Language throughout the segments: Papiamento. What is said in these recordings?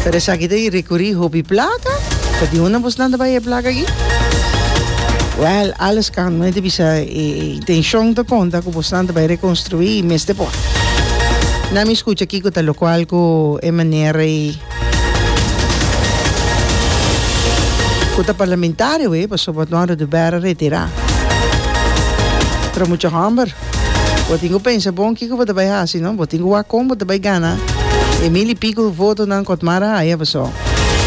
Pero esaki ta e recuri hopi placa. Pero di hunda bos lanta bay e placa aki? Well, alles kan. No hay te bisa e, e intención ta conta cu bos lanta bay reconstrui y mes te por. Na mi escucha kiko ta locual cu e manera y cu ta parlamentario e, pasobra Eduardo de Vera retira. Pero mucha homber. Bo tin cu pensa bon kico bo ta bay haci, no? Bo tin cu wak con bo ta bay gana e mil y pico votonan cu Otmar a haya paso?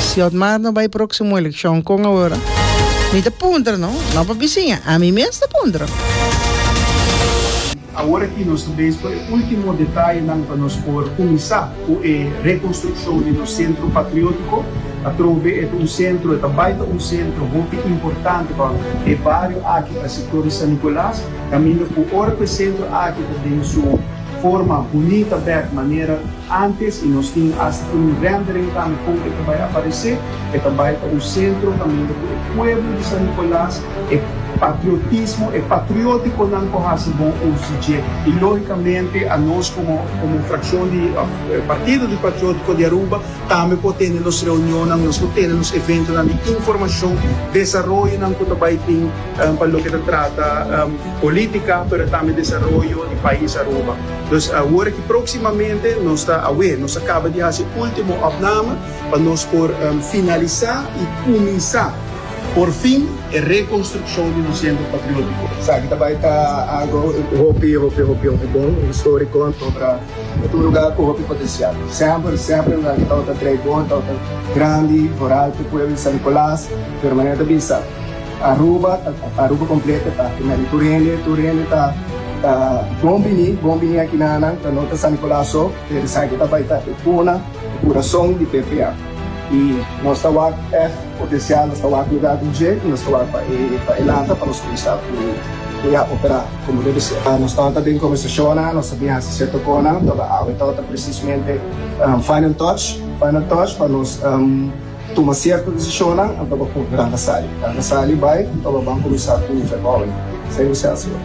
Si Otmar no bay proximo eleccion, con awor? Mi ta puntra, no? No pa bisiña, ami mes ta puntra. Awor aki nos ta bezig cu e ultimo detayenan pa nos por cuminsa cu e reconstruccion di nos Centro Patriotico. Atrobe e ta un centro, e ta bay ta un centro hopi importante pa e bario aki, pa e sector di San Nicolas. Caminda cu ora cu e centro aki ta den su forma bunita bek manera antes y nos tin hasta un rendering tambe con e ta bay aparece, e ta bay ta un centro caminda cu e pueblo di San Nicolas, e patriotismo, e patrioticonan cu haci bon uso dje. Y logicamente a nos como como fraccion di Partido di Patriotico di Aruba tambe por tene nos reunionnan, nos por tene nos eventonan di informacion, desaroyonan cu ta bay tin. pa loke ta trata polítika pero tambe desaroyo di pais Aruba. Nos a hora ki próksimamente nos ta awé, nos ta kaba di hasi último òpname pa nos por finalisá i kuminsá porfin e rekonstrukshon di nos Sentro Patriótiko. Esaki ta bai ta algu hopi hopi hopi hopi bon, históriko, antotra e ta un lugá ku hopi potensial. Semper semper e lugá ki tabata trei bon, tabata grandi, vorátil, pueblo di San Nicolas, pero manera ta bisa, Aruba ta Aruba completo ta aki nan di Turende, Turende ta ta bon bini, bon bini aki nan nan ta no ta San Nicolas so, pero esaki ta bai ta e cuna, e curason di PPA. Y nos ta wak ef potencial, nos ta wak lugar den dje y nos ta wak pa e pa e lanta pa nos cuminsa cu cu ya opera como debe ser. Nos tawata ta den conversacionnan, nos a bin haci cierto conan, toda awe tawata precisamente final touch, final touch pa nos Tuma sierto desishonnan anto pa punto nan ta sali. Nan ta sali bai anto pa ban kuminsá ku Nifer Bouwen. Esei ku Sels yo.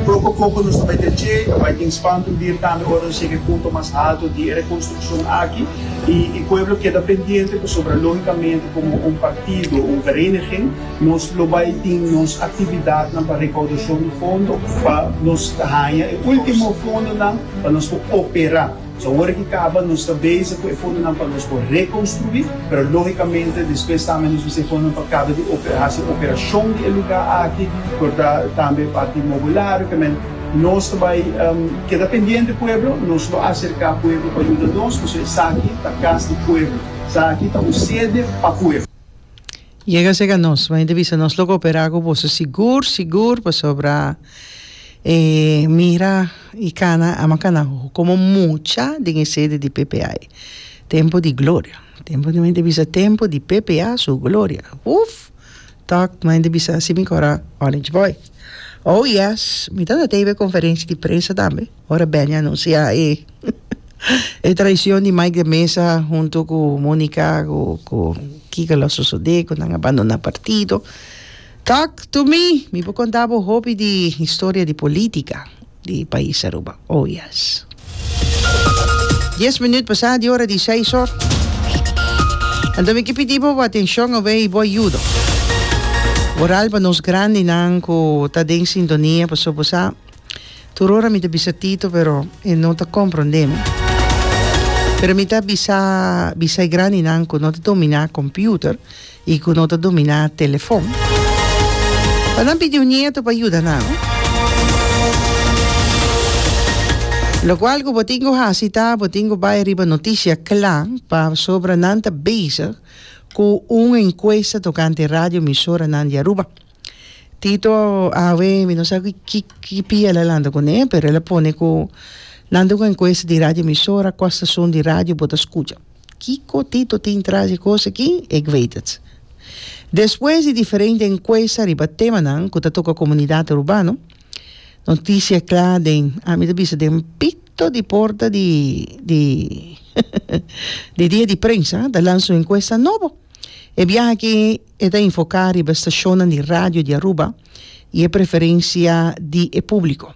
Poko poko nos ta bai kreshe, ta bai tin spantu bir tambe ora nos shega e punto mas halto di e rekonstrukshon aki i e pueblo keda pendiente pasobra lógikamente komo un partido, un vereniging, nos lo bai tin nos aktividatnan pa rekaudashon di fondo pa nos haña e último fondonan pa nos ku operá. So awor ki kaba nos ta bezig ku e fondonan pa nos por rekonstruí, pero lógikamente despues tambe nos mester e fondonan pa kaba di hasi operashon di e lugá aki, por ta tambe e parti inmobiliario ke men. Nos ta bai keda pendiente pueblo, nos lo aserká pueblo pa yuda nos, pasobra esaki ta kas di pueblo, esaki ta un sede pa pueblo. Yega sega nos, Maña ta bisa nos lo koperá ku boso sigur sigur pasobra e mira i kana a makana hoho komo mucha den e sede di ppa ei. Tempu di gloria, tempu di maña ta bisa tempu di ppa su gloria uff tòg maña ta bisa si mi kòrá Orange Boy. Oh yes mi tabata teibo e konferenshi di prensa tambe. Ora Benny a anunsiá e e traishon di Mike de Mesa huntu ku Monica ku ku kiko lo a sosodé ku nan a bandoná partido. Tok to mi, mi por konta bo hopi di historia di polítika di pais Aruba. Oh yes. Dies minüt pasá di ora di seis hor. Anto mi ke pidi bo bo atenshon awe i bo ayudo. Boral pa nos grandinan ku ta den sintonia pasobra bo sa Tur ora mi ta bisa Tito pero e no ta compronde mi. Pero mi ta bisa bisa e grandinan cu no ta domina computer y cu no ta domina telefon pa nan pidi un nieto pa yuda nan. Locual cu bo tin cu haci ta bo tin cu bay riba noticia cla pasobra nan ta bezig cu un encuesta tocante radioemisoranan di Aruba. Tito a awe mi no sa ki ki ki pia el a lanta kuné pero el a pone ku nan ta ku enkuesta di radio emisora kua stashon di radio bo ta skucha kiko Tito tin tras e kos aki ik weet het despues di diferente enkuesta riba temanan ku ta toka komunidat urbano notisia kla den a mi ta bisa den pito di porta di di di dia di prensa ta lansa un enkuesta nobo e biaha aki E ta enfoká riba stashonnan di radio di Aruba i e preferensia di e públiko.